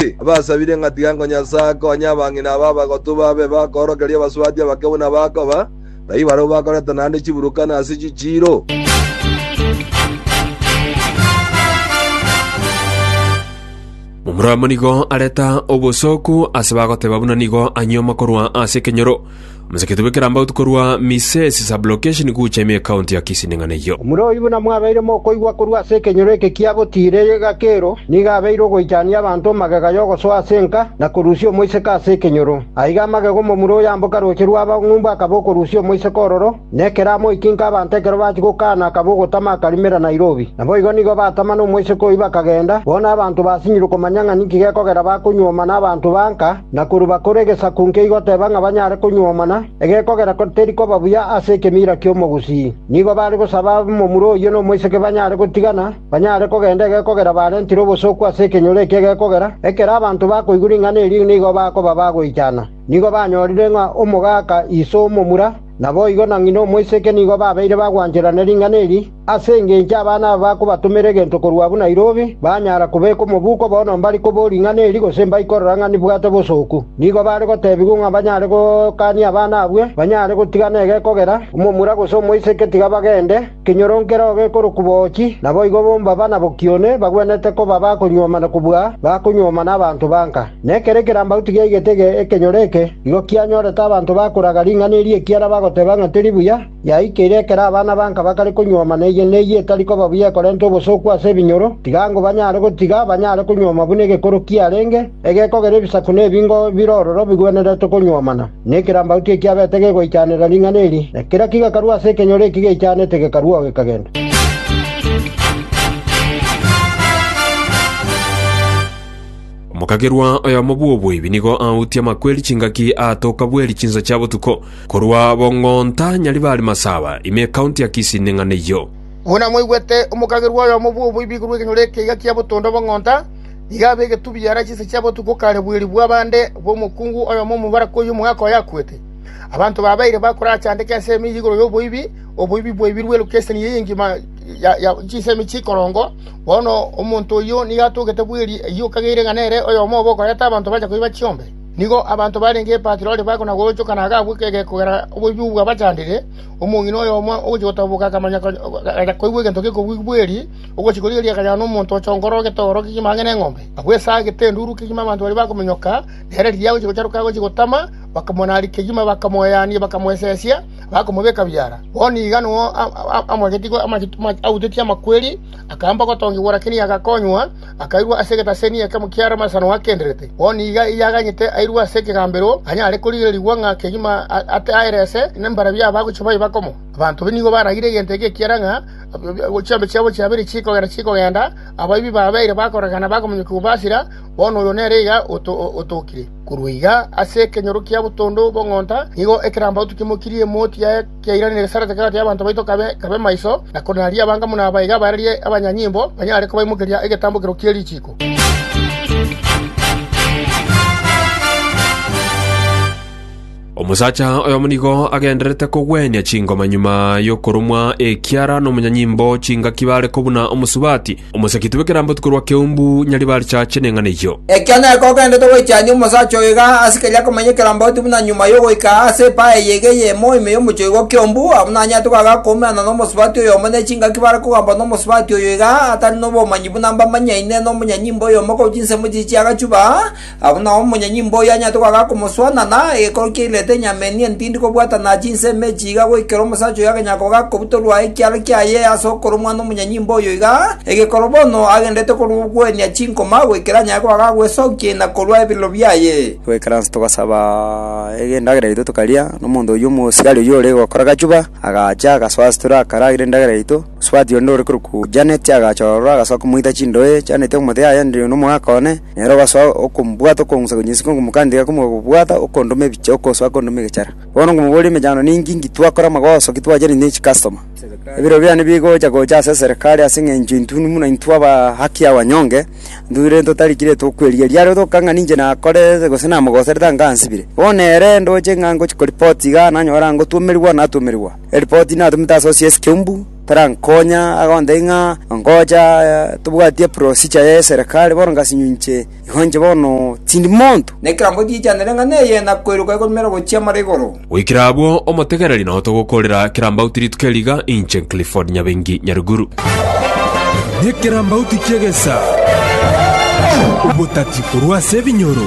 Ase abasabire ng'a tiga nkonyasae akonye abang'ina aba abagotu babe bakoorokeria abasubati abake buna bakoba, taiyo barabwo bakoreta naende chiburukana ase chichiiro. Omorwamo nigo areta obosooku ase bagoteba buna nigo anyuoma korwa ase ekenyoro. Moseketie bw'ekerambau tikorwa Misesi sub-location gocha ime County ya Kisii ning'ana eyio. Omura oyio buna mwabeire mokoigwa korwa ase ekenyoro eke kia botiire egeka kero, nigo abeire ogoichania abanto magega y'ogosoa ase enka na korusia omoiseke ase ekenyoro. Aiga amagega omomura oyamboka roche rw'abang'umbu akaba okorusia omoiseke ororo, na ekero amoikinka abanto ekero bachia gokaana akaba ogotama akarimera Nairobi. Naboigo nigo batama nomoiseke oyio bakagenda, bono abanto basinyire komanya ng'a ninki gekogera bakonyuoma nabanto ba nka, Na korwa bakore egesaku nkeiga goteba ng'a banyare konyuomana, egekogera teri koba buya ase ekemiira ki'omogusii. Nigo bare gosaba momura oyio nomoiseke banyare gotigana, banyare kogenda egekogera barentire obosooku ase ekenyoro ekio egekogera, ekero abanto bakoigwa ring'ana erio nigo bakoba bagoichana. Nigo banyorire ng'a omogaka iso omomura, Naboigo na ng'ina omoiseke nigo babeire bagwancherana ring'ana eri, ase engencho abana aba bakobatomera egento korwa abwo Nairobi, banyara kobeka omobuko bono mbare kobo ring'ana eri gose mbaikorora ng'a nibwate bosooku. Nigo bare gotebigwa ng'a banyare gokania abana abwo banyare gotigana egekogera, omomura gose omoiseke tiga bagende, Kenyoro kereo gekorokwa Boochi, naboigo bombaba na bokione bagwenerete koba bakonyuomana kobua bakonyuomana abanto banka. Nekero ekerambauti giaigetege ekenyoro eke, igo kianyorete abanto bakoraga ring'ana eri ekiagera bagoteba ng'a teri buya yaikeire ekero abana banka bakare konyuomana eye ne eye etari koba buya ekorenta obosooku ase ebinyoro, tiga ngo banyare gotiga banyare konyuoma buna egekoro kiarenge. Egeko kera ebisaku na ebingo bire ororo bigwenerete konywomana, na ekerambauti ekiabete gegoichanera ring'ana eri, na kera kigakarwa ase ekenyoro eki geichanete gekarwa oo gekagenda. Omokagerwa oyomo bw'oboibi nigo autie amakweri chingaki aatoka bweri chinsa chia botuko, korwa Bong'onta, Nyaribari Masaba, ime ekaunti ya Kisii neng'ana eyio. Buna mwaigwete, omokagerwa oyomo bw'oboibi igurwa ekenyoro ekiya kia botondo Bong'onta, Iga abegetwe biara chinsa chia botuko kare bweeri bw'abande bw'omokungu oyomo omobaraka oyio omogaka oye akwete. Abanto babeire bakorachandeke ensemo eyio igoro y'oboibi, oboibi bwaibirwe lokeseni eye engima chinsemo chikorongo. Bono omonto oyio nigo atogete bweeri eyio okageire ng'a nere oyomo obe okoreta abanto bache koiba chiombe. Nigo abanto barenge Patiroli bakona-goonchoka na agakwa ekegega kogera oboibi obwo bwabachandire. Omong'ina oyomo ogochia gotoboka akamonya, agacha koigwa egento gekobugigwa bweeri. Ogochika oria erio akanyora nomonto ochongora egetogoro kegima ang'e neng'ombe. Agwo esaa agete enduru kegima abanto baria bakominyoka, na ere riria agochia gocharoka agochia gotama, bakamonaaria kegima, bakamoyania, bakamoesesia, bakomobeka biara. Bono iga nigo amoegetie autetie amakweri, akaamba gotongigwa, lakini agakonywa, akairwa ase egetaseni ekemo kia Lamasa nonya akenderete. Bono iga erio aganyete airwe ase ekegambero, anyare korigererigwa ng'a kegima aterese, nembarabi abagochia baye bakomo. Abanto nigo baragire egento eke ekiagera ng'a Chiambe chiabo chiabere chikogenda chikogenda, abaibi babeire bakorekana bakomonya kobasira, bono oyo nere iga otokire. Korwa iga ase ekenyoro kia botondo bw'ong'onta nigo ekerambaoto kimokirie emoti yaye kiairanire egesarete kegati y'abanto baito kabe maiso, na konaria abanga buna aba iga barerie abanyanyimbo banyare kobaimokeria egetambokero kie richiiko. Omosacha oyomo nigo agendererete kogwenia chingoma nyuma y'okoromwa ekiara nomonyanyimbo chingaki bare kobuna omosubati, omosakiti bw'ekeramboti korwa keumbu Nyaribari chache neng'ana eyio. Ekia nere kogendererete goichania omosacha oyo iga ase keri akomanya ekeramboti buna nyuma y'ogoika ase epae eye iga eyemo ime y'omochoigo o keumbu, abwo nanyarete koaga koumerana nomosubati oyomo ne chingaki bare kogambwa nomosubati oyo iga atari nobomanyi buna mbamanyaine nomonyanyimbo oyomo korwa chinsemo chiria chi'agachuba, Agwo nao omonyenyimba oyio anyarete goaka akomosoa, na naye egekooro kiairerete enyama enia entindi kobwatana chinsa ime echi iga goikera omosacha oyo agenyara koba akobutorwa ekiara kiaye ase okorwa omwana omonyenyimba oyo iga, egekooro bono agendererete korwa ogwenia chinkoma goikera anyare goaka agwesokia ina korwa ebirero biaye. Goikera inse togasaba endagera yaito tokaria, na omonto oyio omosiari oyio ore gokora gachuba, agacha agasoa ase tore akaragera endagera yaito. Mosubati onde ore korokwa Janet agacha ororo agasoa komoita chindoe, Janet omote, Yaya, ndiri nomogaka one. Nere ogasoa okombwata okong'usa konyesika okomokandera komoka kobwata okondoma ebicha okosoa kondoma egechara. Bono nkomoboria emechando ninki inki twakora amagoso ki twachire ne chikastoma. Ebiro biane bigocha gocha ase eserekari ase eng'encho intwe buna intwe aba haki ya wanyonge intwe rende totari ki rende tokwerigeria are toka ng'a ninche nakorete gose namogoserete ango ansibire. Bono ere ndoche ng'a ngochi koripoti igaa nanyora ng'a ngotuomerigwa natuomerigwa. Eripoti natumete ase OCS Kiumbu. Tarankonya, agondei ng'a ngocha tobwati eprosicha y'eserekari, bono ngasinyo inche, igo inche bono tindi monto. Na ekerango giichanere ng'a neye, na koiroka igomera gochia amara igoro. Goikera abwo, omotegeneri nao togokoorera kerambauti rituko eri iga, inche Clifford Nyabengi Nyaruguru. Nekerambauti ki'egesaa, obotati korwa ase ebinyoro.